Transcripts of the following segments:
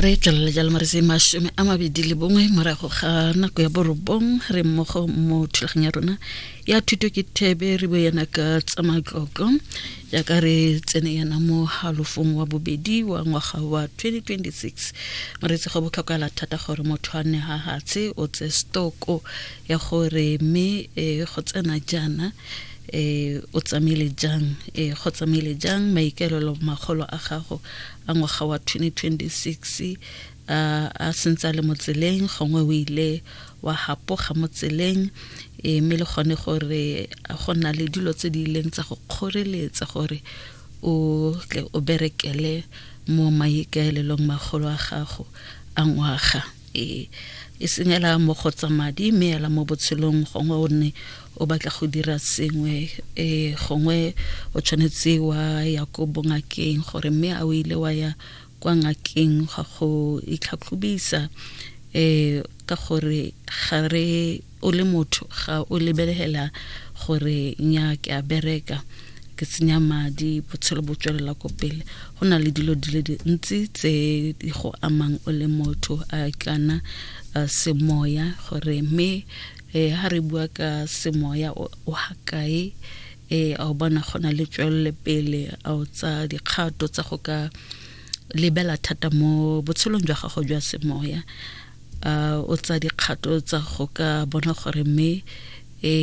re tswelela jalo mo re se masome a mabedi le bongwe morago ga nako ya borobong re mmogo mo thulagang ya rona ya thuto ke thebe re bo yana ka tsa matlotlo jaaka re tsene yana mo halofong wa bobedi wa ngwaga wa 2026 moreetsi go botlhokala thata gore motho a ne ga gatshe o tse stoko ya gore mme e, go tsena jaana e, o tsamaile jang e, go tsamaile jang maikaelelo magolo a gago a ngwaga wa 2026 a, a sentse a le mo tseleng gongwe o ile wa hapoga mo tseleng e, mme le gone gore go na le dilo tse di ileng tsa go kgoreletsa gore o tle o berekele mo maikaelelong magolo a gago a ngwaga e e senyela mo go tsa madi mme ela mo botshelong gongwe o nne o batla go dira sengwe e gongwe o tshwanetse wa ya ko bongakeng gore mme a o ile wa ya kwa ngakeng ga go itlhatlhobisa um ka gore ga re o le motho ga o lebelela gore nya ke a bereka ke tsenya madi botshelo bo tswelela ko pele go na le dilo di le dintsi tse di go amang o le motho a kana semoya gore mme um ha re bua ka semoya o ha kae um a o bona go na le tswelele pele a o tsa dikgato tsa go ka lebela thata mo botshelong jwa gago jwa semoya uh, o tsa dikgato tsa go ka bona gore mme e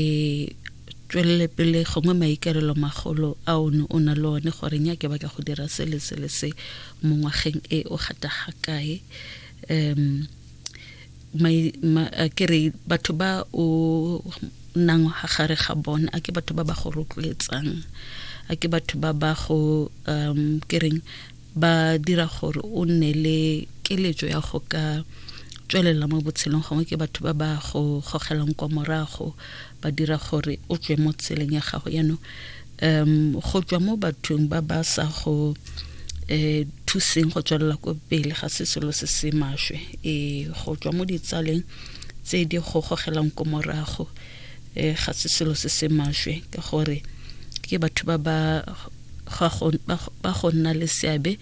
tswelele pele gongwe maikarelo magolo a o ne o na le one gore nya ke batla go dira se le se le se mo ngwageng e o gata ga kae um ke re batho ba o nang ga gare ga bone a ke batho ba ba go rotloetsang a ke batho ba ba go um ke reng ba dira gore o nne le keletso ya go ka tswelela mo botshelong gongwe ke batho ba ba go gogelang kwa morago ba dira gore o tswe mo tseleng ya gago yaanong um go tswa mo bathong ba ba sa go um thuseng go tswelela ko pele ga se selo se se maswe e go tswa mo ditsaleng tse di go gogelang ko morago um ga se selo se se maswe ka gore ke batho ba ba ba go nna le seabe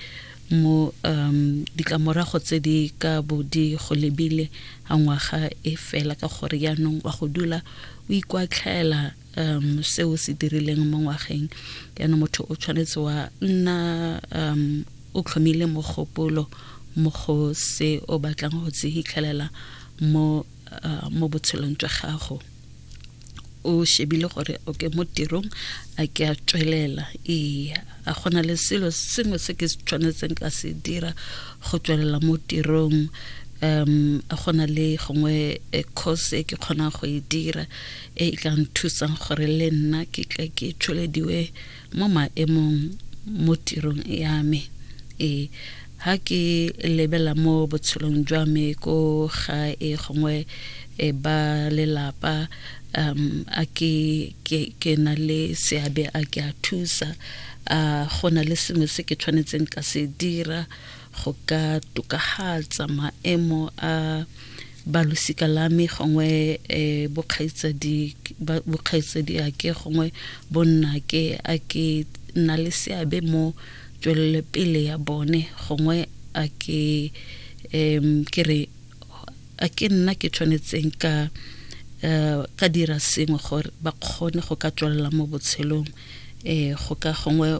mo um ditlamorago tse di ka bo di go lebile a ngwaga e fela ka gore yaanong wa go dula o ikwatlhaela um se o se dirileng mo ngwageng yaanong motho o tshwanetse wa nna um o tlhomile mogopolo mo go se o batlang go se hitlhelela mo uh, mo botshelong jwa gago o shebile gore okay mo tirong a ke a tswelela ee a gona le selo sengwe se ke tshwanetseng ka se dira go tswelela mo tirong um a gona le gongwe eh, course e ke kgonang go e dira e e ka nthusang gore le nna ke tle ke tshwelediwe mo maemong mo tirong ya me e ha ke lebela mo botshelong jwa me ko ga e gongwe e ba lelapa um a ke ke ke na le seabe a ke a thusa a go na le sengwe se ke tshwanetseng ka se dira go ka tokagatsa maemo a balosika la me gongwe um bokgaitsadi ake gongwe bonna ke a ke nna le seabe mo tswelelepele ya bone gongwe a ke um ke re a ke nna ke tshwanetseng ka um ka dira sengwe gore ba kgone go ka tswelela mo botshelong um go ka gongwe